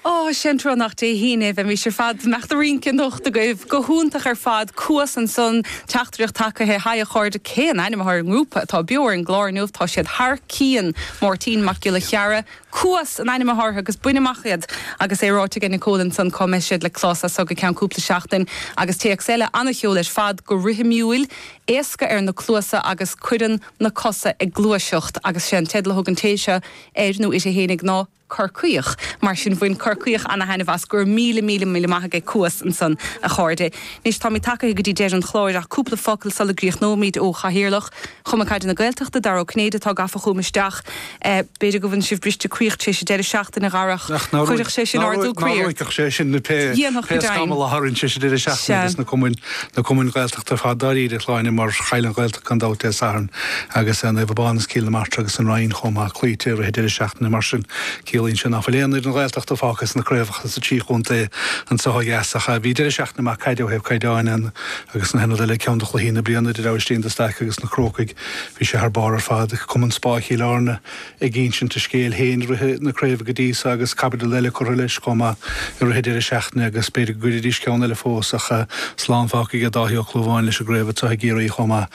Ó, sén trua nach Dé hAoine é a bheimís ar fad. Mbeadh do rínce anocht agaibh. Go hiontach ar fad. Cuas ansan. Teachtaireacht tacaithe, Haigh a chairde, cé an ainm atá ar an ngrúpa atá beo ar an gclár inniu? Tá siad thar cionn! Máirtín Mac Giolla Cheara. Cuas an ainm atá orthu agus bain amach iad! Agus é ráite ag Nicole ansan cá mbeidh siad le clos as so go ceann cúpla seachtain. Agus téacs eile, An-cheol ar fad, go rithimiúil, éasca ar na cluasa agus cuireann na cosa ag gluaiseacht. Agus sé an teideal a thug an té seo air nó uirthi féinig ná Corcaíoch. Mar sin, bhain Corcaíoch ana-thaitneamh as. Go raibh míle míle míle maith ag Cuas ansan, a chairde. Anois, táimid tacaithe go dtí deireadh an chláir, ach cúpla focal sula gcríochnóimid ó Chathaoirleach Chumann Caide na Gaeltachta, Dara Ó Cinnéide, atá gafa chugam isteach. B'fhéidir go bhfuil sibh bristechroíoch tar éis an deireadh seachtaine a Dhara, ach nár chuirfeadh sé sin ardú croí ort? ruaigfeadh sé sin pé scamall a tharraing sé sa deireadh seachtaine agus na cumainn Gaeltachta. D'oirfeadh dáiríre a Shláine mar chaill an Ghaeltacht gan dabht Dé Sathairn agus Naomh Abán is Cill na Martra agus an Rinn chomh maith cloíte i rith an deireadh seachtaine mar sin ciallaíonn sé nach bhfuil aon fhoireann Ghaeltachta fágtha sna craobhacha sa trí chontae anseo ó dheas ach bhí deireadh seachtaine maith caide ó thaobh caighdeáin agus na haon rud eile ceann de chluichí na bliana idir Aibhistín de Staic agus na Crócaigh bhí sé thar barr ar fad ag Cumann Spá Chill Airne ag insint a scéil féin i rith na craoibhe go dtí so agus caibidil eile curtha leis chomh maith i rith an deireadh seachtaine agus b'fhéidir go gcuirfidís ceann eile fós ach slán fágtha aige Dáithí Ó Clúmháin leis an gcraobh anseo i gCiarraí chomh maith.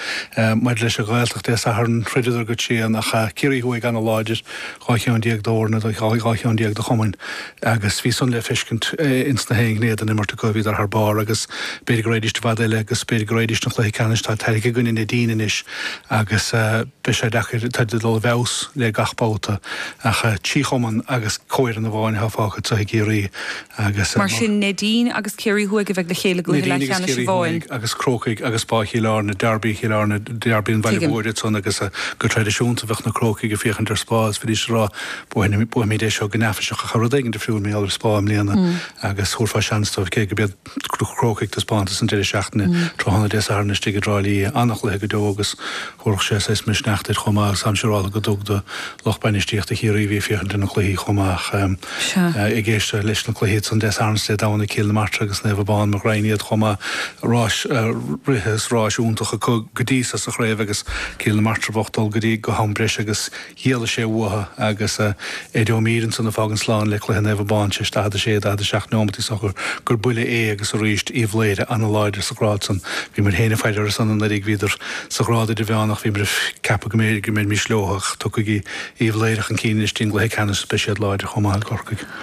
Maidir leis an Ghaeltacht Dé Sathairn throideadar go tréan ach Ciarraí thuaidh an-láidir, dhá cheann déag d'fhoirne do dhá cheann déag do chumainn agus bhí san le feiscint ins na haon ghné den imirt acu, bhíodar thar barr agus b'fhéidir go raghaidís i bhfad eile agus b'fhéidir go raghaidís don chluiche ceannais atá tarraingthe i gcoinne Neidín anois agus. Beidh sé deacair táid ag dul i bhfeabhas le gach babhta ach trí chumann agus comhfhoireann amháin atá fágtha anso i gCiarraí agus. Mar sin Neidín agus Ciarraí Thuaidh a bheidh le chéile i gcluiche leathcheannais amháin agus Crócaigh agus Spá Chill Airne, Dearbaí Chill Airne, Dearbaí an Bhaile Mhóir iad san agus go traidisiúnta bheadh na Crócaigh ag féachaint ar Spá. Is fuiriste a rá buafaimid é seo go neafaiseach ach tá rud éigin difriúil mar gheall ar Spá i mbliana agus thabharfá seans dóibh cé go Crócaigh taispeántas an deireadh seachtaine tráthnóna Dé Sathairn istigh i dTrá Lí an-chluiche go deo agus thabharfadh sé saghas misneach duit chomh maith agus táim siúráltha go dtug do lucht bainistíochta Chiarraí a bhí ag féachaint ar na cluichí chomh maith ag éisteacht leis na cluichí san Dé Sathairn is Dé Domhnaigh Cill na Martra agus Naomh Abán mo ghraidhin iad chomh maith rás rite is rás iontach acu go dtí seo sa chraobh agus Cill na Martra bocht dul go dtí go ham breise agus D'éalaigh sé uathu agus Ed Ó Mír ansan ag fágaint slán le cluiche Naomh Abán théis 46, 47 nóimeat is dócha gur buille é agus arís Uíbh Laoghaire an-láidir sa ghrád san. Bhíomair féin ag faire orthu san anuraidh, bhíodar sa ghrád idirmheánach, bhíomair ag ceapadh go mbeimís leo ach tiocfaidh Uíbh Laoghaire chun cinn anois i gcluiche ceannais is beidh siad láidir chomh maith le Corcaigh.